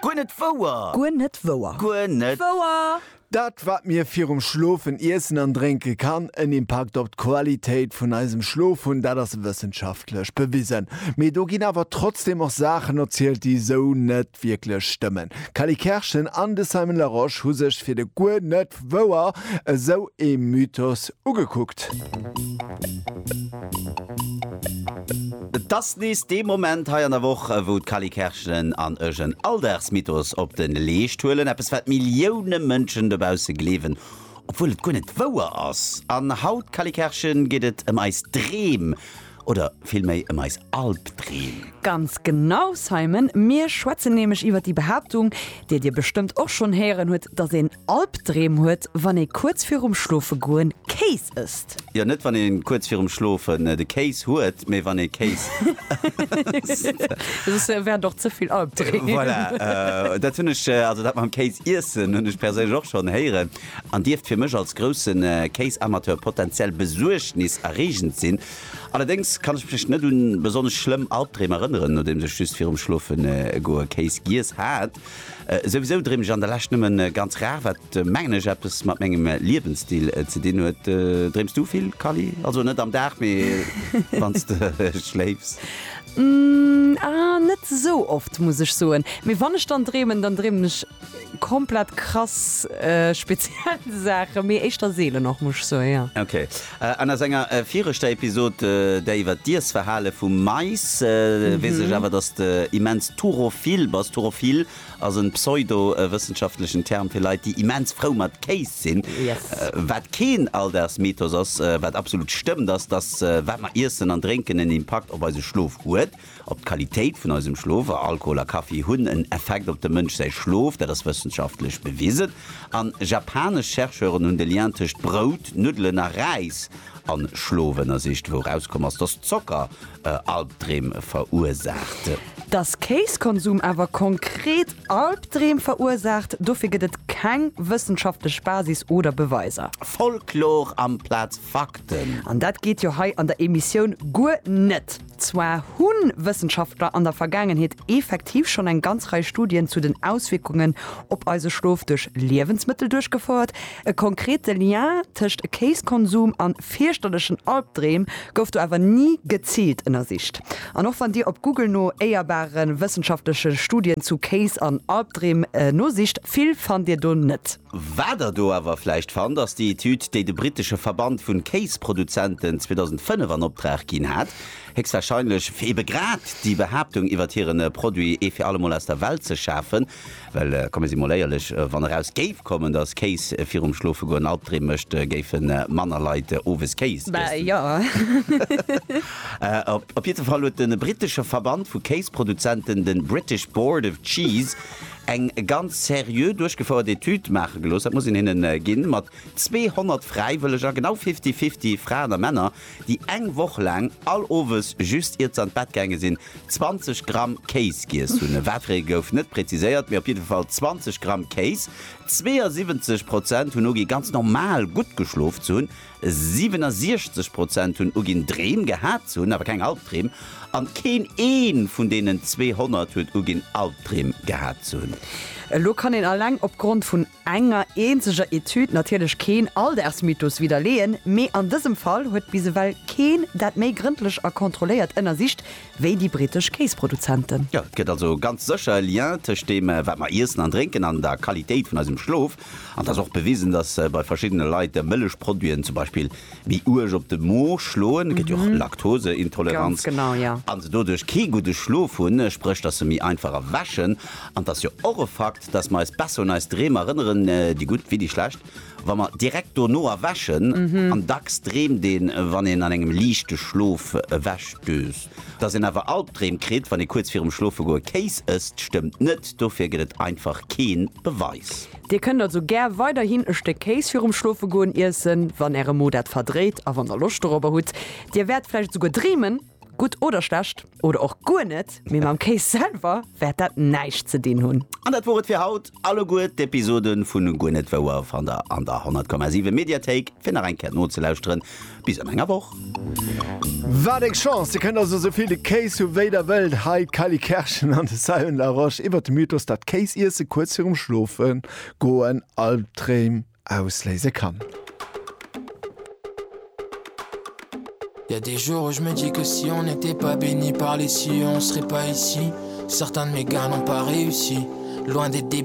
Guer net wouer! Guer net wouer! Guer net wouer! Dat wat mir virum Schlofen iessen an drénken, kann en Impakt op d'Qualitéit vun eisem Schlof hunn. Dat ass wëssenschaftlech bewisen. Mee do ginn awer trotzdem och Saachen erzielt, déi esou net wierklech stëmmen. D'Cally Kerschen an de Simon Larosche hu sech fir de Guer net. Pop wouer esou ee Mythos ugekuckt. Et ass nees dee Moment hei an der Woch, wou d'Cally Kerschen an ech en Alldagsmythos op de Leescht huelen, eppes wat Millioune Mënschen dobausse gleewen, obwuel et guer net wouer ass. An haut, Cally Kerschen, geet et ëm eis Dreem, oder vill méi ëm eis Albdreem. Ganz genau, Simon, mir schwätzen nämlech iwwer déi Behaaptung, déi dir bestëmmt och schonn héieren hutt, datt een, Albdreem huet wann ee kuerz virum schlofe goen Kéis ësst. Jo net wann een kuerz virum schlofen de Kéis huet, mee wann ee Kéis ësst. Soss wären och ze vill Albdreem. Voilà, dat hunn ech, also dat mam Kéis iessen hunn ech perséinlech och schonn héieren an dierft fir mech als groussen Kéisamateur potenziell Besuergnis erreegend sinn. Allerdéngs kann ech mech net un besonnesch schlëmm Albdreem erënneren, nodeems ech just virum schlofen goe Kéis giess hat. Souwisou dreem ech an der Lescht nëmmen ganz rar, wat mengen ech eppes mat mengem Liewensstil ze dinn huet. Dreems du vill Kally? Also net am Dag, mee wanns de schléifs? Ah net sou oft muss ech soen, mee wann ech dann dreemen, dann dreemen ech komplett krass speziell Saachen, mee éischter seelen och muss ech soen, jo. Ok. An aus enger viregter Episod, där iwwer d'Iessverhale vum Mais, weess ech awer, dass de immens Turophil bass. Turophil ass en pseudo-wëssenschaftlechen Term fir Leit, déi immens frou mat Kéis sinn. Wat keen Alldagsmythos ass, wat absolut stëmmt, ass, dass wat mer iessen an drénken en Impakt op eise Schlof huet. Op d'Qualitéit vun eisem Schlof, a Alkohol a Kaffi hunn en Effekt op dem Mënsch säi Schlof, dat ass wëssenschaftlech bewisen. An japanesch Chercheuren hunn de Lien tëscht Brout, Nuddelen a Räis an Schlof ënnersicht, wou erauskomm ass, dass Zocker Albdreem verursaacht. Dass Kéiskonsum awer konkret Albdreem verursaacht, dofir gëtt et keng wëssenschaftlech Basis oder Beweiser. Folklor amplaz Fakten! An dat geet jo hei an der Emissioun guer net! Zwar hu Wëssenschaftler an der Vergaangenheet effektiv schonn eng ganz Rei Studien zu den Auswierkungen op eise Schlof duerch Liewensmëttel duerchgefouert. E konkrete Lien tëscht Kéiskonsum a fierchterlechen Albdreem gouf do awer ni geziilt ënnersicht. An och wann Dir op Google no éierbare wëssenschaftleche Studien zu Kéis an Albdreem nosicht, vill fannt Dir do net. Wat der do awer vläicht fannt, ass déi Etüd, déi de brittesche Verband vun Kéisproduzenten 2005 an Opdrag ginn hat, héchstwahrscheinlech fir ebe grad déi Behaaptung iwwert hiren Produit ee fir allemol aus der Welt ze schafen. Well, komme si mol éierlech, wann eraus géif kommen, dass Kéis virum Schlofegoen Albdreem mécht, géife manner Leit owes Kéis iessen. Op jiddefall huet de brittesche Verband vu Kéisproduzenten, de British Board of Cheese, eng ganz seriö duerchgefouert Etüd maache gelooss, dat muss een hinnen ginn, mat 200 Fräiwëlleger, genau fifty-fifty Fraen a Männer, déi eng Woch laang all Owes, just iert se an d'Bett gaange sinn, 20 Gramm Kéis giess hunn. Wat fir ee gouf net präziséiert, mee op jidde Fall 20 Gramm Kéis. 72 Prozent hunn ugi ganz normal gutt geschlof ze hunn. 67 Prozent hunn uginn, Dreem gehat ze hunn, awer keng Albdreem, an keen ee vun deenen 200 huet uginn, Albdreem gehat ze hunn. Elo kann een alleng opgrond vun enger eenzeger Etüd natierlech keen Alldaagsmythos widderleeën, mee an dësem Fall huet bis ewell keen dat méi grëndlech a kontrolléiert ënnersicht wéi déi brittesch Kéisproduzenten. Jo, et gëtt also ganz sécher e Lien tëscht deem, wat mer iessen an drénken, an der Qualitéit vun eisem Schlof. An et ass och bewisen, datt bei verschiddene Leit Mëllechproduiten zum Beispill méi uerg op de Mo schloen, et gëtt jo och Laktoseintoleranz, a se doduerch kee gudde Schlof hunn, spréch datt se méi einfach erwächen. An et ass jo och e Fakt, datt mer eis besser un eis Dreem erënneren, déi gutt wéi déi schlecht, wa mer direkt dono erwächen. An dacks dreemt een, wann een an engem liichte Schlof ewechdöst. Dass een awer Albdreem kritt, wann ee kuerz virum Schlofegoe Kéis ësst, stëmmt net. Dofir gëtt et einfach kee Beweis. Dir kënnt also gär weiderhin e Stéck Kéis virum Schlofegoen iessen, wann Äre Mo dat verdréit a wann Der Loscht dorobber hutt. Dir wäert vläicht esouguer dreemen, gutt oder schlecht, oder och guer net, mee mam Kéis selwer wäert dat näischt ze dinn hunn. An dat wor et fir haut. Alleguer d'Episoden vu Guer net wouer fannt der an der 100,7 Mediathéik fir nach eng Kéier nozelauschteren. Bis an enger Woch. Wat eng Chance! Dir kënnt also souvill de Kéis hu wéi der wëllt. Hei d'Kylie Kerschen an de Simon Larosche iwwert de Mythos, datt Kéis iesse kuerz virum Schlofe goen Albdreem ausléise kann. Y'a des jours où je me dis que si on n'était pas béni par les cieux on serait pas ici certains de mes gars n'ont pas réussi loin d'être des.